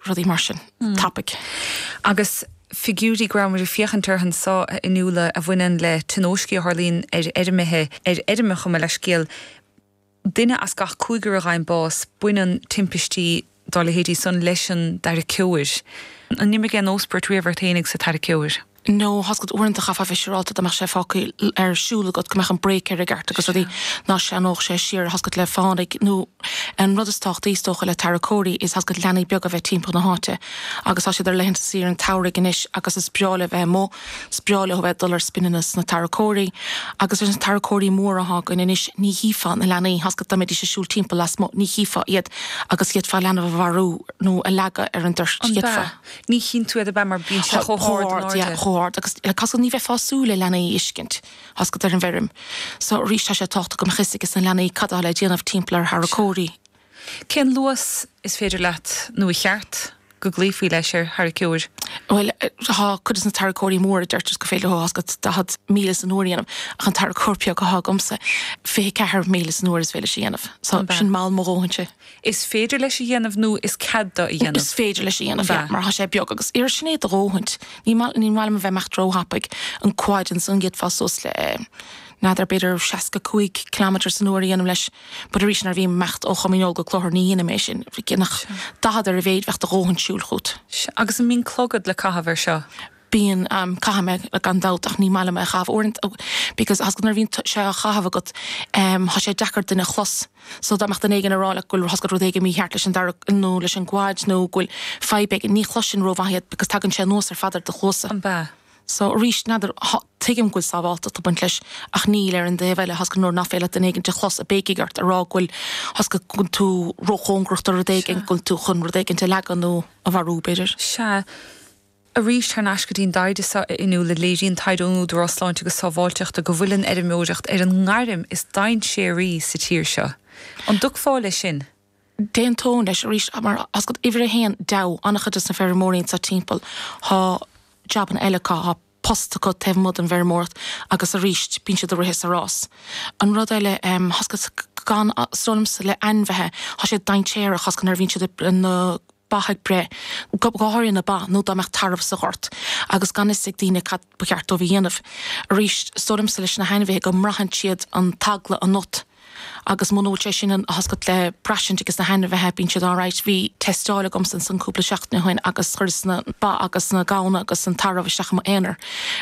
rudaí mar sin. Tapaidh. Agus figiúirí go rabhamair ag féachaint orthu anseo, a Fhionnuala, a bhaineann le tionóiscí a tharlaíonn ar fheirmithe, ar fheirmeacha, gabh mo leithscéal, duine as gach cúigear a fhaigheann bás, baineann timpistí dá leithéidí san leis an dtarraiceoir. An imigh aon óspairt riamh ort fhéinig sa tarraiceoir? no, tá's agat, uaireanta chaithfeá a bheith siúráilte dá mbeadh sé fágtha ar siúl agat, go mbeadh an brake air i gceart agus rudaí, ná sleamhnódh sé siar, tá's agat, le fánaidh nó an rud is tábhachtaí is dócha le tarracóirí is, tá's agat, leanaí beaga a bheith timpeall na háite agus tá siad ar laethanta saoire an tsamhraidh anois agus is breá leo bheith amuigh, is breá leo a bheith ag dul ar spinanna sna tarracóirí agus leis na tarracóirí móra atá againn anois ní chífeá na leanaí, tá's agat, dá mbeidís ag siúl timpeall lasmuigh ní chífeá iad agus d'fhéadfá leanbh a mharú nó a leagadh ar an dtoirt, d'fhéadfá. Ní chíonn tú iad ab ea mar bíonn siad chomh hard in airde? Chomh hard agus tá's agat ní bheifeá ag súil le leanaí a fheiscint tá's agat ar an bhfeirm so arís tá sé tábhachtach go mbeadh 'fhios ag na leanaí cad atá le déanamh timpeall ar tharracóirí. Cén luas is féidir leat nó ba cheart go gcloífí leis ar tharraiceoir? Bhuel tá cuid de na tarracóirí móra deirtear go féidir tá's agat 40 míle san uair a dhéanamh ach an tarracóir beag atá agamsa 24 míle san uair is féidir leis a dhéanamh so sin mall mo dhóthainse. Is féidir leis a dhéanamh nó is cead dó a dhéanamh. Is féidir leis a dhéanamh, yeah, mar tá sé beag agus yeah sin é do dhóthaint. Ní maith, ní maith liom a bheith ag imeacht róthapaidh. An quad ansan d'fhéadfá suas le n'fheadar b'fhéidir 65 kilometre san uair a dhéanamh leis but arís nuair a bhím ag imeacht ó Chom Dhíneol go Cloichear ní dhéanaim é sin. Dhéanfadh Sure. 40 ar a mhéid bheadh do dhóthaint siúil fút. Sea, Agus an mbíonn clogad le caitheamh ar seo? bíonn, caithim é, gan dabht, ach ní maith liom é a chaitheamh uaireanta because tá's agat nuair a bhíonn sé á chaitheamh agat tá sé deacair duine a chlos so dá mbeadh duine éigin ag rá like go bhfuil tá's agat rud éigin mícheart leis an dtarra nó leis an gquad nó go bhfuil fadhb éigin, ní chloiseann rómhaith iad because tagann sé anuas ar fad ar do chluasa. Ab ea. So arís, n'fheadar, tuigim go bhfuil sábháltacht ag baint leis ach níl ar an taobh eile tá's agat nuair nach féidir leat duine éigint a chlos ag béicigh ort ag rá go bhfuil tá's agat go bhfuil tú róchóngarach do rud éigin, go bhfuil tú chun rud éigint a leagan nó a mharú b'fhéidir. Sea. Arís, thar n-ais go dtí an dtaighde seo a Fhionnuala, léiríonn taighde ón Údarás Sláinte agus Sábháilteachta go bhfuil an fheirmeoireacht ar an ngairm is dainséaraí sa tír seo. An dtiocfá leis sin? D'aontóinn leis, arís, mar tá's agat uimhir a haon deabhadh an-chuid de na feirmeoirí anseo timpeall, tá jabanna eile acu, tá post acu taobh amuigh den bhfeirmeoireacht agus arís, bíonn siad ag rith is ag rás. An rud eile, tá's agat, is dóigh liomsa le ainmhithe, tá siad dainséarach, tá's agat nuair a bhíonn siad ag na. ba ag breith, go háirithe na ba, nó dá mbeadh tarbh sa ghort agus gan fhios ag daoine cad ba cheart dóibh a dhéanamh. Arís, is dóigh liomsa leis na hainmhithe go mbraitheann siad an t-eagla ionat agus muna bhfuil sé sin ionat, tá's agat, le braistint aige sna hainmhithe, bíonn siad alright. Bhí teisteáil agamsa ansan cúpla seachtain ó shin agus chuireas na ba agus na gamhna agus an tarbh isteach i m'aonar,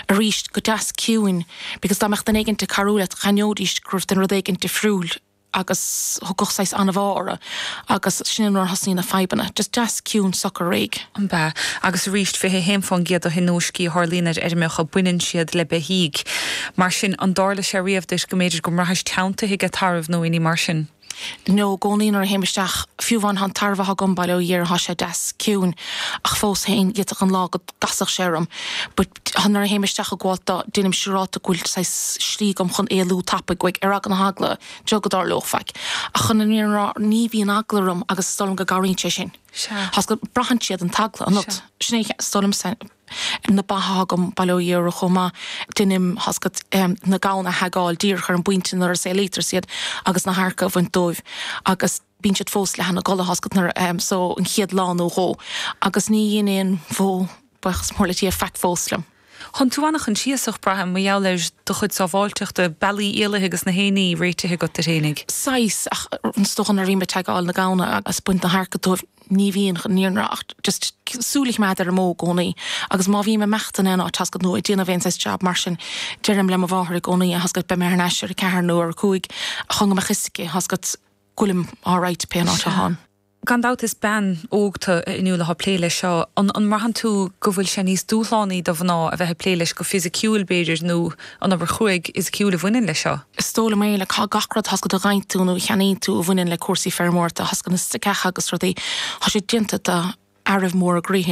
arís, go deas ciúin, because dá mbeadh duine éigin ag cabhrú leat, d'aithneoidís go raibh tú in rud éigin difriúil. agus tagann saghas anbhá orthu agus sin nuair a thosnaíonn na fadhbanna. Just deas ciúin socair réidh. An bhea. Agus arís, 21% de thionóiscí a tharlaíonn ar fheirmeacha, baineann siad le beithígh. Mar sin, an dtarla sé riamh duit go mb'fhéidir go mbraithis teanntaithe ag tarbh nó aon ní mar sin? No, i gcónaí nuair a théim isteach, fiú amháin tá an tarbh athá agam, bail ó Dhia air, thá sé deas ciúin, ach fós féin, d'fhéadfadh an lá go gcasfadh sé orm. Nuair a théim isteach ag gabháilt dó, déanaim siúráta go bhfuil saghas slí agam chun éalú tapaidh uaidh, ar eagla na heagla, beo go dtarlódh faic. Ach chun an fhírinne a rá, ní bhíonn eagla orm agus is dóigh liom go gcabhraíonn sé sin, tá a fhios agat. Braitheann siad an t-eagla ionat. Sea. Sin é, is dóigh liom, na ba athá agam, bail ó Dhia orthu chomh maith, deinim, tá a fhios agat, na gamhna a thaigeáil díreach ar an bpointe nuair a saolaítear siad agus na hadharca a bhaint dóibh agus, bíonn siad fós leath ina gcodladh, tá a fhios agat, nuair a, so an chéad lá nó dhó agus ní dhein aon bhó, buíochas mór le Dia, faic fós liom. Thánn tú ana-choinsiasach, braithim, mar gheall ar do chuid sábháilteachta, bealaí éalaithe agus gach éinní réitithe agat duit fhéinig. Saghas, ach is dócha nuair a bhím ag taigeáil na gamhna agus ag baint na hadharca dóibh ní bhíonn ann i ndáiríre ach just súil a choimeád ar an mbó i gcónaí agus má bhím ag imeacht in aon áit, tá a fhios agat, nó ag déanamh aon saghas jab mar sin deirim le mo mháthair i gcónaí, tá a fhios agat, beidh mé thar n-ais ar a ceathair nó ar a cúig chun go mbeadh a fhios aici, tá a fhios agat. Go bhfuilim alright, pé an áit atháim. Gan dabht is bean óg tu inniúil athá ag plé leis seo. An an mbraitheann tú go bhfuil sé níos dúshlánaí do mhná a bheith ag plé leis go fisiciúil, b'fhéidir, nó an obair chruaidh fhisiciúil a bhaineann leis seo? Is dóigh liom é, like, thá gach rud tá a fhios agat, a dheineann tú nó a cheannaíonn tú a bhaineann le cúrsaí feirmeoireachta, tá a fhios agat, na staiceacha agus rudaí. Thá sé déanta do. fhearaibh móra groí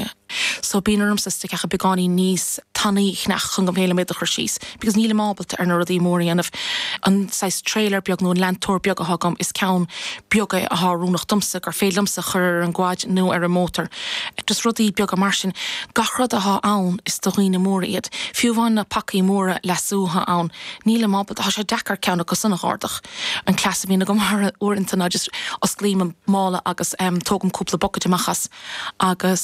so bíonn ormsa staiceacha beagáinín níos tanaí a cheannach chun go bhféadfaidh mé iad a chur síos because nílim ábalta ar na rudaí móra a dhéanamh. An saghas trailer beag nó an leantóir beag athá agam, is ceann beag é athá oiriúnach domsa gur féidir liomsa a chur ar an gquad nó ar an mótar. Just rudaí beaga mar sin. Gach rud athá ann is do dhaoine móra iad. Fiú amháin na pacaí móra leasú athá ann, nílim ábalta, thá sé deacair ceann acu san a dh'ardach. an cleas a bhíonn agam uaireanta ná just osclaím an mála agus tógaim cúpla bucket amach as agus.